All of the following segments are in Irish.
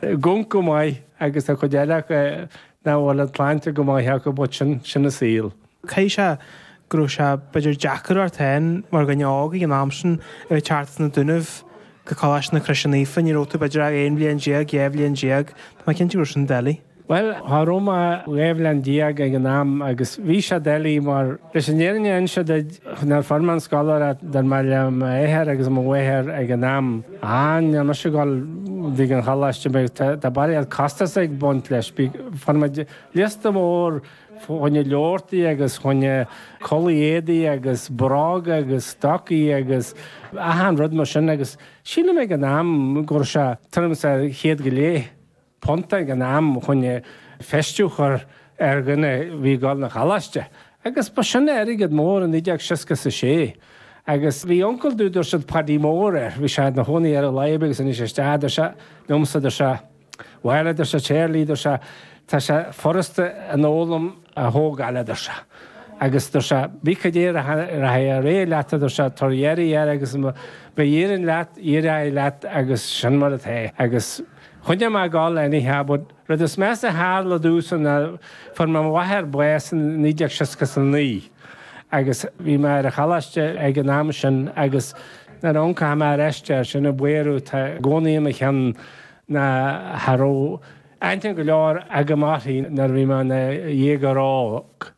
go maith agus an chuid eile acu nach bhfuil an tsláinte go maith acu but sin, sin an saol. Thig liom a rá go raibh sé b'fhéidir deacair ort féin mar dhuine óg ag an am sin a bheith ag teacht as na Dúnaibh go Coláiste na Croise Naofa, ní raibh tú b'fhéidir ach aon bhliain déag, dhá bhliain déag, tá mé cinnte go raibh sin doiligh. Bhuel, cha raibh mé ach dhá bhliain déag ag an am agus bhí sé doiligh mar, leis an fhírinne a inse duit, nuair a fuair mé an scoláireacht d'fhan mé le m'athair agus mo mháthair ag an am. Ó, níl mise ag gabháil chuig an choláiste mar tá barraíocht costas ag baint leis. Fuair muid liosta mór fá choinne leabharthaí agus fá choinne culaith éadaigh agus bróga agus stocaí agus achan rud mar sin agus sílim ag an am go raibh sé tuairim is ar chéad go leith. punt ag an am chun feistiú a chur ar dhuine a bhí ag goil 'na choláiste agus ba sin airgead mór i 1966 agus bhí uncail domh dúirt siad Paidí Mór air bhí sé ina chónaí ar láimh agus anois is é a dúirt sé liomsa dúirt sé bhuel a dúirt sé Charlie dúirt sé tá sé furasta an fhoghlaim a thógáil a dúirt sé agus dúirt sé bhí cad é rachaidh a réidh leat a dúirt sé tar iarraidh air agus ba iarraidh leat iarraidh leat agus sin mar a tharla agus Choinnigh mé ag gol anyhow but rud is measa a tharla domhsa ná fuair mo mháthair bás i 1969 agus bhí mé ar an choláiste ag an am sin agus nuair a amharcaim ar ais air, sin an buaireamh atá i gcónaí i mo cheann ná cha raibh aithne go leor agam uirthi nuair a bhí mé ina dhéagóir óg.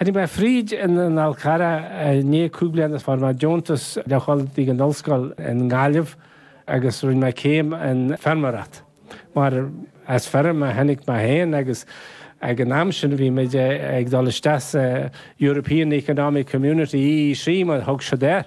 Tháinig mé fríd in any case i ndiaidh cúig bliana is fuair mé deontas le dhul ag an ollscoil i nGaillimh agus rinne mé céim in feirmeoireacht. Mar as feirm a tháinig mé féin agus ag an am sin bhí muid ag dul isteach sa European Economic Community, EEC, mar a thug siad air.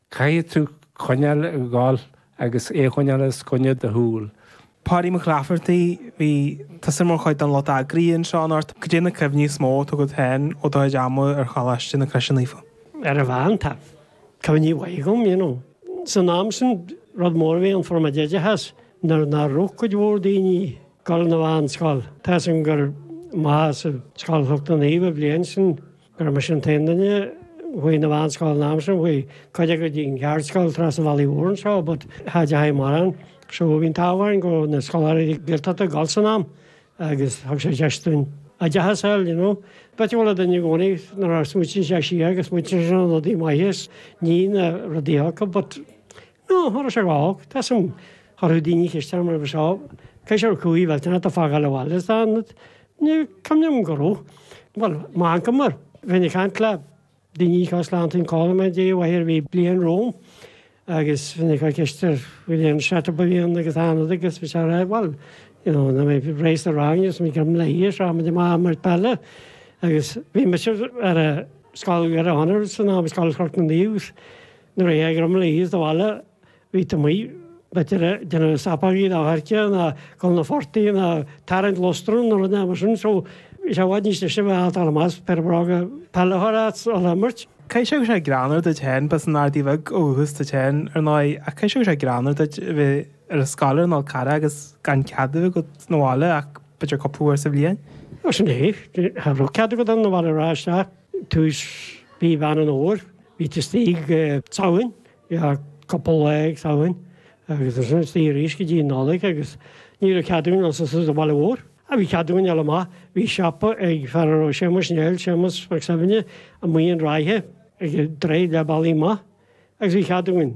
Caithfidh tú coinneáil ag dul agus é choinneáil os coinne do shúl. Páidí Mac Laifeartaigh, Bhí tusa mar chuid den lucht eagraithe anseo in Art. Cad iad na cuimhní is mó atá agat féin ó do chuid ama ar Choláiste na Croise Naofa? Ar an mheán, tá cuimhní maithe agam, you know. San am sin, rud mór a bhí ann fuair muid oideachas nuair nach raibh cuid mhór daoine ag gabháil 'na mheánscoil. Tá 'fhios agam gur mé sa scoil s'againne féin an bhliain sin. gurb mise an t-aon duine a chuaigh 'na mheánscoil an am sin, chuaigh cuid acu go dtí an cheardscoil trasna an bhealaigh mhóir anseo but cha dteachaidh mórán. So bhí an t-ádh orainn go raibh na scoláireachtaí Gaeltachta ag dul san am agus thug sé deis dúinn oideachas a fháil, you know. But is dual do dhuine i gcónaí nuair a smaoiníonn sé siar agus smaoiníonn sé ar na rudaí maithe is ní na rudaí olca but Nó an thuras a ghabhadh tá suim. Chuirfeadh daoine ceist orm roimhe seo, Cén sórt cuimhní atá fágáil abhaile sa Ionad? Ní cuimhin liom go raibh. Bhuel, má fhangamar, bheinn ag caint le daoine seo slántaí an codladh mé dtí i bhfaiche ar bhí bliain romham agus bheinn ag cur ceist an bhfuil aon setup araon agus Ionad agus bhí sé a rá bhuel, you know, na mé réidh leis an rang agus mé gabh léi a seo muid amach ag imirt peile agus bhí mise ar a scoil Dhoire Chonaire san am scoil Chnoc na Naomh agus Nuair a théighrim le hÍosa 'na bhaile bhí tú amuigh, b'fhéidir a' déanamh sopógaí ná coirce ná gul 'na phortaigh ná tarraingt lustan nó rud éigin mar sin, so bhí sé i bhfad níos deise a bheith a' dul amach 's péire bróga peile a chur ort 's a dhul a imirt. Caithfidh sé go raibh greannmhar duit féin, b'as an Ardaí Bheag ó dhúchas duit féin ar ndóigh, ach caithfidh sé go raibh greannmhar duit a bheith ar an scoil ar an Fhál Carrach agus gan cead a bheith agat 'na bhaile ach b'fhéidir cúpla uair sa bhliain? Ó sin é, cha raibh cead agat dul 'na bhaile a rá isteach. Tús mhí Mheán an Fhómhair, bhí tú istigh. tSamhain, bhí cúpla lá ag Samhain agus ansin istigh arís go dtí an Nollaig agus ní raibh cead againn dul suas an bhaile mhór. Ah bhí cead againn dul amach, bhí siopa ag fear a raibh Séamus Néill, Séamus Mac Suibhne, amuigh in Ráithe ag draoi le bealach amach agus bhí cead againn.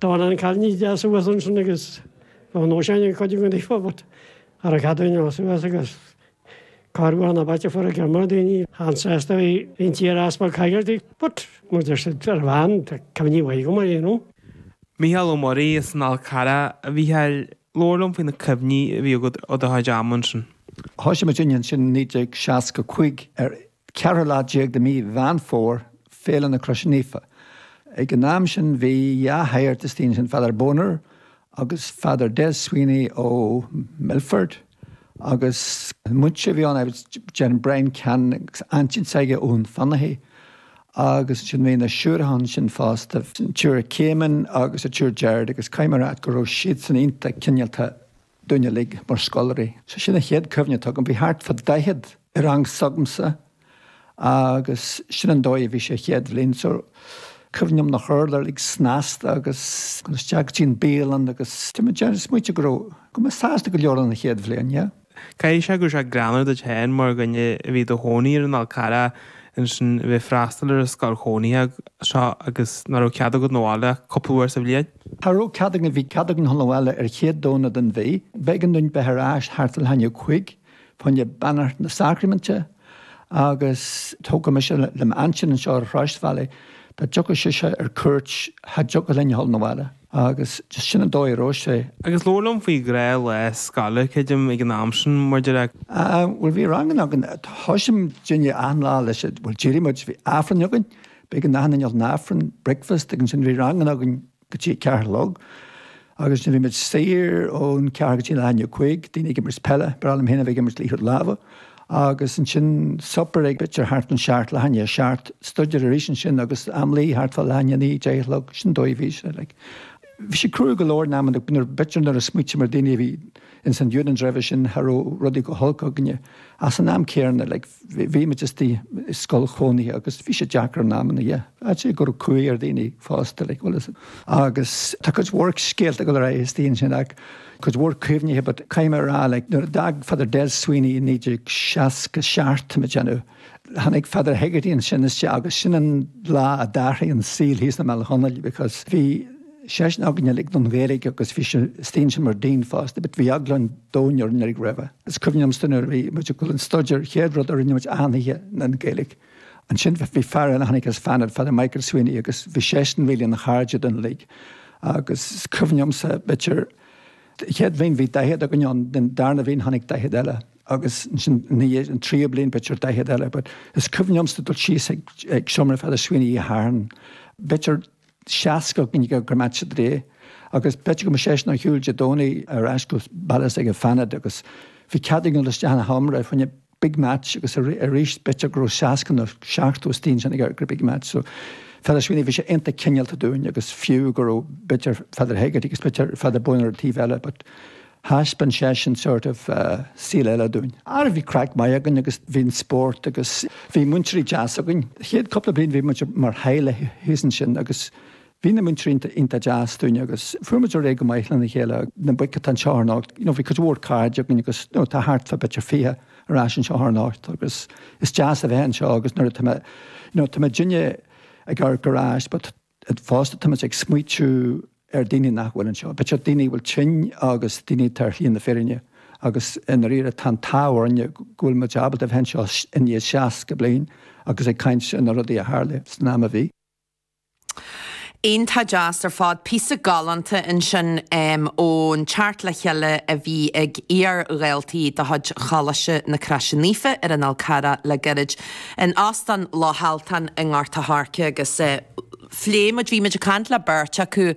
D'fhan an cailín deas uasal ansin agus ba nós léi cuid a gcontae a thabhairt ar a ceadúnas ó Suas agus cár bhuail na bailte foracha mura daoine an-sásta a bhí inti ar easpa coigeartuí, 'But, muid, ar siad, 'ar bhean, tá cuimhní mhaithe agam uirthi, you know. Mícheál Ó Muirí as an Fhál Carrach, A Mhícheáil, labhair liom faoi na cuimhní a bhí agat ó do chuid ama ansin. Thoisigh muid ansin i 1965 ar Ceathrú lá déag de mí Mheán Fómhair, Féile na Croise Naofa. Ag an am sin bhí dhá shagart istigh ansin, Father Boner agus Father Des Sweeney ó Milford agus an múinteoir a bhí ann, déarfainn Brian Cannon agus aintín s'aige ó Dhún Fionnachaidh agus ansin bhí na siúracha ansin fosta, an tSiúr Caimín agus an tSiúr Gerard agus caithfidh mé a rá go raibh siadsan iontach cineálta. dúinn uilig mar scoláirí. So sin an chéad cuimhne atá agam. Bhí thart fá daichead i rang s'agamsa agus sin an dóigh a bhí sé chéad bhliain. So cuimhním nach raibh orainn uilig snasta agus dul isteach go dtí an bialann agus tá mé ag déanamh smaointigh go raibh, go raibh muid sásta go leor an chéad bhliain, yeah. Caithfidh sé go raibh sé greannmhar duit féin mar dhuine a bhí i do chónaí ar an Fhál Carrach ansin a bheith ag freastal ar an scoil chónaithe seo agus nach raibh cead agat na bhaile ach cúpla uair sa bhliain. Cha raibh cead againn, bhí cead againn dhul abhaile an chéad Domhnach den mhí, b'éigean dúinn bheith ar ais thart ar leath i ndiaidh a cúig fá choinne Beannacht na Sacraiminte agus tógadh mise le m'aintín anseo ar an tsráidbhaile, dá dtiocfadh sise ar cuairt cha dtiocfadh linn a dhul abhaile agus sin an dóigh a raibh sé. Agus labhair liom faoi ghnáthlá scoile, creidim, ag an am sin, mar a déarfá. Ah, bhuel bhí ranganna againn, thosaigh muid achan lá leis, bhuel d'éirigh muid, bhí Aifreann againn, B'éigean dúinn a ghabháil chun Aifrinn, breakfast, agus ansin bhí ranganna againn go dtí a ceathair a chlog agus nuair bhí muid saor ón ceathair go dtí leath i ndiaidh a cúig, daoine ag imirt peile, b'fhearr liom féin a bheith ag imirt liathróid láimhe, agus ansin supper ag b'fhéidir thart an seacht, leath i ndiaidh a seacht, staidéar arís ansin agus am luí thart fá leath i ndiaidh a naoi, deich a chlog, sin an dóigh a bhí sé like. Bhí sé cruaidh go leor in amanna but nuair b'fhéidir nuair a smaoitím ar daoine a bhí In St Eunan's roimhe sin cha raibh rudaí go holc againne ach san am céanna like bhí muid istigh i scoil chónaithe agus bhí sé deacair in amanna yeah. I'd say go raibh cumhaidh ar dhaoine fosta like bhuel agus tá cuid mhór scéalta ag dul ar aghaidh istigh ansin ach cuid mhór cuimhnithe but caithfidh mé a rá like nuair a d'fhág Father Des Sweeney i 1967 tá mé ag déanamh Tháinig Father Hegarty ansin isteach agus sin an lá a d'athraigh an saol thíos i mBaile Chonaill because bhí seisean againn uilig don Ghaeilge agus bhí sé istigh ansin mar Dean fosta but bhí eagla an domhain orainn uilig roimhe. Is cuimhin liomsa nuair a bhí muid ag dul an staidéar chéad rud a rinne muid achan oíche ná an Ghaeilge. Ansin bhí fear ann a tháinig as Fánaid, Father Michael Sweeney agus bhí seisean really ina chairde dúinn uilig agus is cuimhin liomsa b'fhéidir chéad bhliain bhí daichead againn ann den darna bhliain tháinig daichead eile. agus ansin ina dhiaidh an tríú bliain b'fhéidir an daichead eile but is cuimhin liomsa dul síos ag ag seomra Father Sweeney oíche Shathairn b'fhéidir seasca againn istigh ag amharc ar Match of the Day agus b'fhéidir go mbeadh seisean ar shiúil Dé Domhnaigh ar ais go baile s'aige i bhFánaid agus bhí cead againn dul isteach ina sheomra fá choinne Big Match agus arís b'fhéidir go raibh seasca nó seachtó istigh ansin ag amharc ar Big Match so Father Sweeney bhí sé iontach cineálta dúinn agus fiú go raibh b'fhéidir Father Hegarty agus b'fhéidir Father Boyne ar an taobh eile but thaispeáin seisean sort of saol eile dúinn. Ara bhí craic maith againn agus bhí an spórt agus bhí múinteoirí deasa againn. Chéad cúpla bliain bhí muid mar theaghlach thíos ansin agus bhí na múinteoirí iontach deas dúinn agus fuair muid ar aghaidh go maith lena chéile. Na boic atá anseo thar anocht, you know, bhí cuid mhór cairde againn agus you know tá thart fá b'fhéidir fiche ar ais anseo thar anocht agus is deas a bheith anseo agus nuair atá mé, you know, tá muidinne ag amharc ar ais but, Fosta, táimid ag smaoitiú ar daoine nach bhfuil anseo. B'fhéidir daoine a bhfuil tinn agus daoine atá ar shlí na fírinne. Agus i ndairíre, tá an t-ádh orainne go bhfuil muid ábalta a bheith anseo i ndiaidh 60 bliain agus ag caint ar na rudaí a tharla san am a bhí. Iontach deas ar fad, píosa galánta ansin ón Teacht le Chéile a bhí ag iar-dhaltaí de chuid Choláiste na Croise Naofa ar an Fhál Carrach le gairid. in Óstán Loch Altan i nGort an Choirce agus phléigh muid, bhí muid ag caint le beirt acu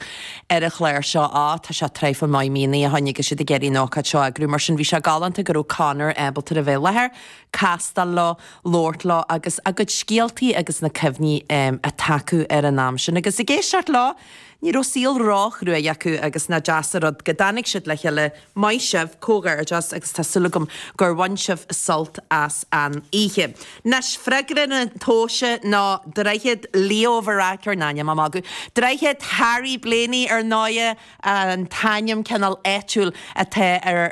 ar an chlár seo, á tá sé traidhfil maith míonna ó shin agus iad ag iarraidh an ócáid seo a eagrú mar sin bhí sé galánta go raibh Conor ábalta a bheith i láthair, castáil leo, labhairt leo agus a gcuid scéaltaí agus na cuimhní atá acu ar an am sin agus ag éisteacht leo ní raibh saol ró-chruaidh acu agus nach deas an rud go dtáinig siad le chéile Maith sibh, comhghairdeas agus tá súil agam gur bhain sibh sult as an oíche. Nois, freagra na tomhaise ná Droichead Leo Varadkar in ainm a magadh. Droichead Harry Blaney ar ndóigh an t-ainm cineál áitiúil atá ar